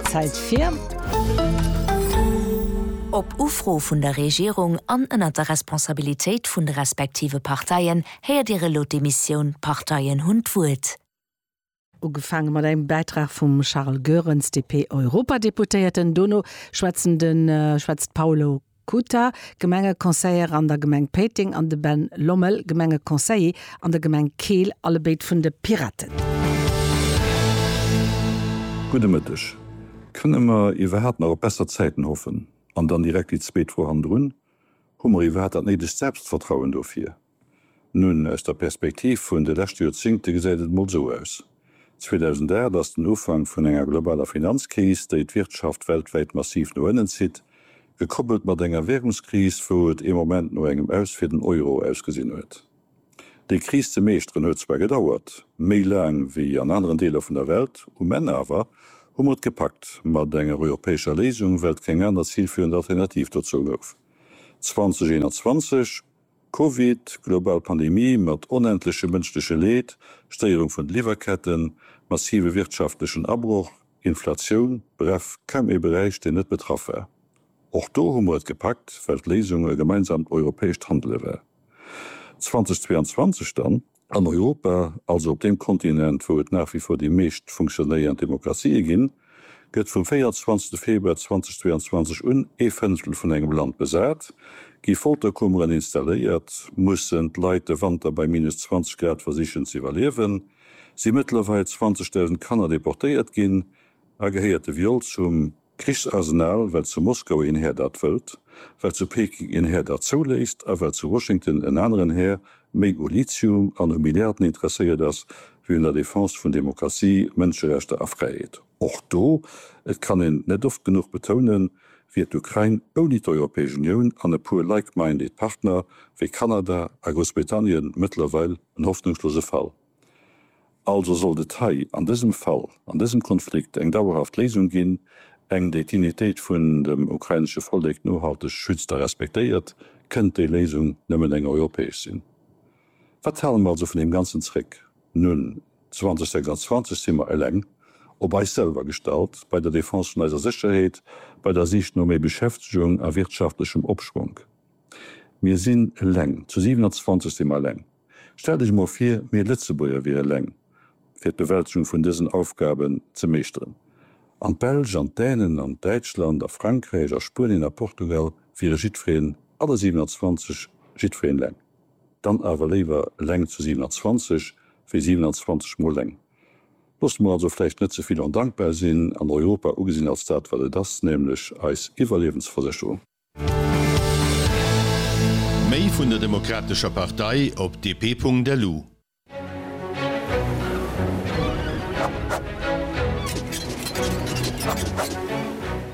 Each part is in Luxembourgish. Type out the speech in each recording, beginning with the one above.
Zäit fir. Op Ufro vun der Regierung an ënnert der Responsabilitéit vun de respektive Parteien héiert Dir elo d'Emissioun D'Parteien hunn d'Wuert. Ugefaange mat engem Bäitrag vum Charles Goerens, DP-Europadeputéierten. Dono schwätzen de schwätzt d'Paolo Kuta, Gemengeconseiller an der Gemeng Péiteng, an de Ben Lommel, Gemengeconseiller an der Gemeng Keel, allebéid vun de Piraten. Gudde Mëtteg. Kënne mer iwwerhaapt nach op besser Zäiten hoffen? An dann direkt déi zweet Fro hannendrun, Hu mer iwwerhaapt dat néidegt Selbstvertrauen dofir? Nun, aus der Perspektiv vun de leschte Joerzingte gesäit et mol esou aus. 2008 ass den Ufank vun enger globaler Finanzkris, déi d'Wirtschaft weltwäit massiv no ënnen zitt, gekoppelt mat enger Währungskris, wou et ee Moment no engem Aus fir den Euro ausgesinn huet. Déi Kris ze meeschteren huet zwar gedauert, méi laang wéi an aneren Deeler vun der Welt, um Enn awer hu mer et gepackt mat enger europäescher Léisung, well et keng aner zilführend Alternativ dozou gouf. 2021. Covid, global Pandemie mat onendleche mënschleche Leed, Stéierung vun de Liwwerketten, massive wirtschaftlechen Abroch, Inflatioun, bref, kaum ee Beräich, deen net betraff war. Och do hu mer et gepackt, well d'Léisung e gemeinsamt europäescht Handele war. 2022 dann? An Europa, also op deem Kontinent, wou et nach wie vor déi meescht funktionéiernd Demokratië ginn, gëtt vum 24. Februar 2022 un ee Fënnftel vun engem Land besat, gi Folterkummeren installéiert, mussen d'Leit de Wanter bei minus 20 Grad versichen ze iwwerliewen, si mëttlerweil 20.000 Kanner deportéiert ginn a gehéiert de Viol zum. Krichsarsenal, well zu Moskau een Här dat wëllt, well zu Peking een Här dat zouléisst a well zu Washington en aneren Här méi u Lithium an u Milliarden interesséiert ass wéi un der Defense vun Demokratie, Mënscherechter a Fräiheet. Och do, et kann een net oft genuch betounen, wier d'Ukrain ouni d'Europäesch Unioun an e puer like-minded Partner wéi Kanada a Groussbritannien mëttlerweil en hoffnungslose Fall. Also sollt et hei an dësem Fall, an dësem Konflikt eng dauerhaft Léisung ginn, eng déi d'Dignitéit vun dem ukrainesche Vollek nohalteg schützt a respektéiert, kënnt déi Léisung nëmmen eng europäesch sinn. Wat hale mer also vun deem Ganzen zréck? Nun, 2026 si mer eleng, op eis selwer gestallt, bei der Defense vun eiser Sécherheet, bei der Sich no méi Beschäftegung a wirtschaftlechem Opschwonk. Mir sinn eleng, zu 27 si mer eleng. Stellt Iech emol vir, mir Lëtzebuerger wiere eleng, fir d'Bewältegung vun dësen Aufgaben ze meeschteren, an d'Belsch an d'Dänen an Däitschland a Frankräich a Spuenien a Portugal wiere jiddwereen, alle 27, jiddwereen eleng. Dann awer léiwer eleng zu 27 wéi 27 mol eleng. Loosst mer also vläicht net ze vill ondankbar sinn an Europa ugesinn als dat, wat et ass, nämlech eis Iwwerliewensversécherung. Méi vun der Demokratescher Partei op dp.lu.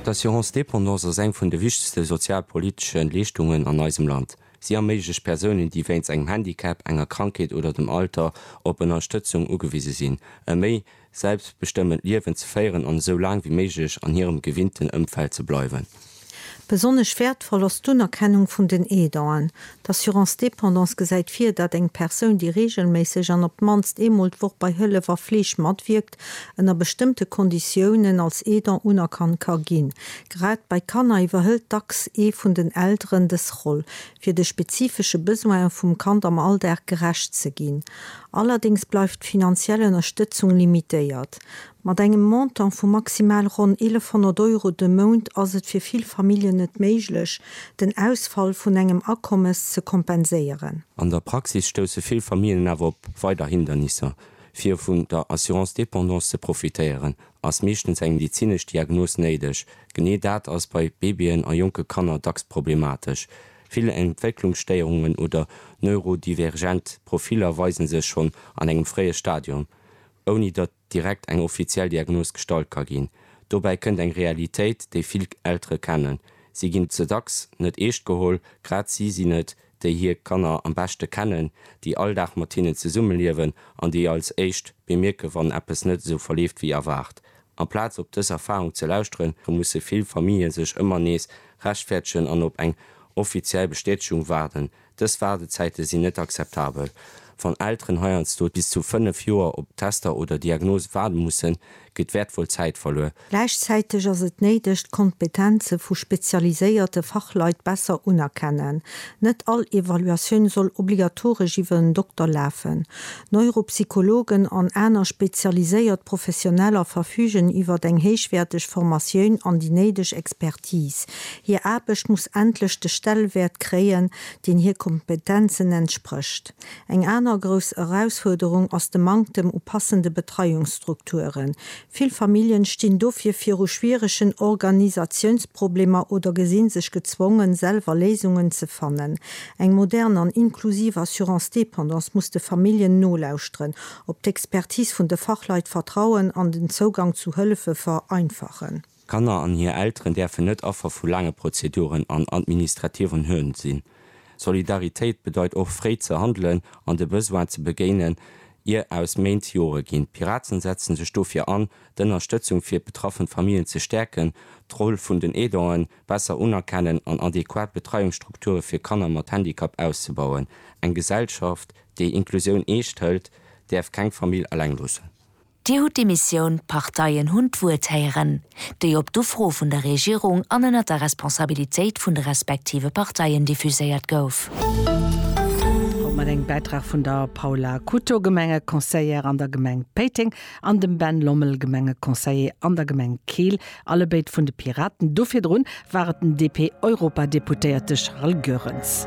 D'Assurance dépendance ass eng vun de wichtegste sozialpolitesche Leeschtungen an eisem Land. Si erméiglecht Persounen, déi wéinst engem Handicap, enger Krankheet oder dem Alter op Ënnerstëtzung ugewise sinn, e méi. selbstbestëmmend Liewen ze féieren an esou laang wéi méiglech an hirem gewinnten Ëmfeld ze bleiwen. Besonnesch wäertvoll ass d'Unerkennung vun den Aidanten. D'Assurance dépendance gesäit vir, dat eng Persoun, déi reegelméisseg an op d'mannst eemol d'Woch bei Hëllef a Fleeg matwierkt, ënner bestëmmte Konditiounen als Aidant unerkannt ka ginn. Grad bei Kanner iwwerhëlt dacks ee vun den Elteren dës Roll. fir de spezifesche Besoine vum Kand am Alldag gerecht ze ginn. Allerdéngs bleift d'finanziell Ënnerstëtzung limitéiert. Mat engem Montant vu maximal ronn 1100 Euro de Mount ass et fir vill Familljen net méiglech, den Ausfall vun engem Akommes ze kompenséieren. An der Praxis stousse vill Familljen awer op weider Hindernisser, fir vun der Assurance dépendance ze profitéieren ass meeschtens eng medezinesch Diagnos néideg. Genee dat ass bei Babyen a jonke Kanner dacks problematesch. Vill Entwécklungsstéierungen oder neurodivergent Profiller weise sech schonn an engem fréie Stadium, ouni datt direkt eng offiziell Diagnos gestallt ka ginn. Dobäi kënnt eng Realitéit, déi vill Eltere kennen, Si ginn ze dacks net eescht geholl, grad si sinn et, déi hir Kanner am beschte kennen, déi all Dag mat hinnen zesumme liewen an déi als éischt bemierken, wann eppes net esou verleeft wéi erwaart. Amplaz op dës Erfarung ze lauschteren, musse vill Famille sech ëmmer nees rechtfäerdegen an op eng offiziell Bestätegung waarden. Dës Waardezäite sinn net akzeptabel. Wann Elteren heiansdo bis zu fënnef Joer op Tester oder Diagnose waarde mussen, geet wäertvoll Zäit verluer. Gläichzäiteg ass et néideg, d'Kompetenze vu spezialiséierte Fachleit besser unerkennen. Net all Evaluatioun soll obligatoresch iwwer en Dokter lafen. Neuropsychologen an aner spezialiséiert Professioneller verfügen iwwer eng héichwäerteg Formatioun an déi néideg Expertise. Hir Aarbecht muss endlech de Stellwäert kréien, deen hir Kompetenzen entsprécht. Eng aner grouss Erausfuerderung ass de Manktem u passende Betreiungsstrukturen. Vill Familljen stinn dofir viru schwieregen Organisatiounsproblemer oder gesinn sech gezwongen, selwer Léisungen ze fannen. Eng modern an inklusiv Assurance Dépendance muss de Familljen nolauschteren, op d'Expertise vun de Fachleit vertrauen an den Zougang zu Hëllefe vereinfachen. D'Kanner an hir Elteren däerfen net Affer vu laange Prozeduren an administrativen Hürden sinn. Solidaritéit bedeit och fréi ze handelen an de Besoine ze begéinen, ier aus Méint Jore ginn. D'Piraten setzen sech dofir an, d'Ënnerstëtzung fir betraffen Famillen ze stäerken, d'Roll vun den Aidanten besser unerkennen an adequat Betreiungsstrukture fir Kanner mat Handicap auszebauen. Eng Gesellschaft, déi Inklusioun eescht hëlt, däerf keng Famill eleng loossen. Dir hutt déi Missioun, d'Parteien hunn d'Wuert héieren, déi op d'Ufro vun der Regierung an ënnert der Responsabilitéit vun de respektive Parteien diffuséiert gouf. Haut mat engem Bäitrag vun der Paula Couto, Gemengeconseillère an der Gemeng Péiteng, an dem Ben Lommel, Gemengeconseiller an der Gemeng Keel, allebéid vun de Piraten. Do virdrun war et den DP-Europadeputéierte Charles Goerens.